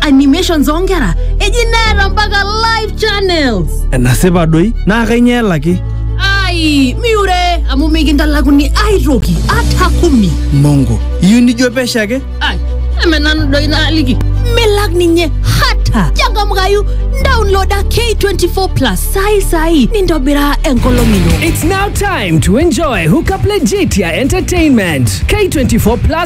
animations oonkera eji neeta mpaka live channels enasipa doi naa kainyoo elaki ai miure amu mikintalakuni aitoki ata kumi mongo iyieu nijo pesho ake ai eme nanu doi naaliki milak ninye hata changamkayu download ake 24 plus sai sai nintobiraa enkolong ino It's now time to enjoy Hookup Legitia Entertainment. K24 Plus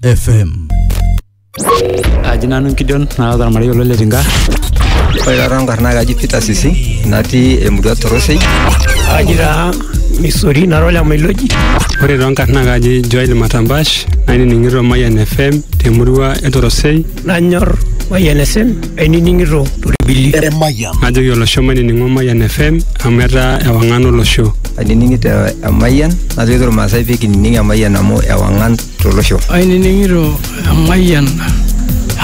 FM. Kaji nanu Gideon naa ormarei olo le Tinga. Ore taata nkarna kaji Peter Sisi natii emurua Torosei. Kaji taa Misori nara ole Mailoji. Ore too nkarna kaji Joel Matambash nainining'ito Mayian FM temurua e Torosei. Nanyor Mayian FM ainining'ito Toribili. Emayian. Najoki olosho mainining'o Mayian FM amu etaa ewang'an olosho. Ainining'ito Emayian najoki Maasai pee kinining Emayian amu ewang'an tolosho. Ainining'ito emayian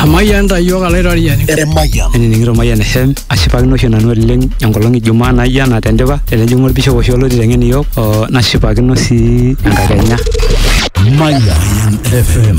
emayian ta iyiook alaitoriani. Emayian. Ainining'ito emayian FM ashipakino oshi nanu oleng enkolong e Jumaa naijo ena tendipa tenejing'u olbishop oshi oloti teng'en iyiook oo nashipakino sii enkakenya. Mayan FM.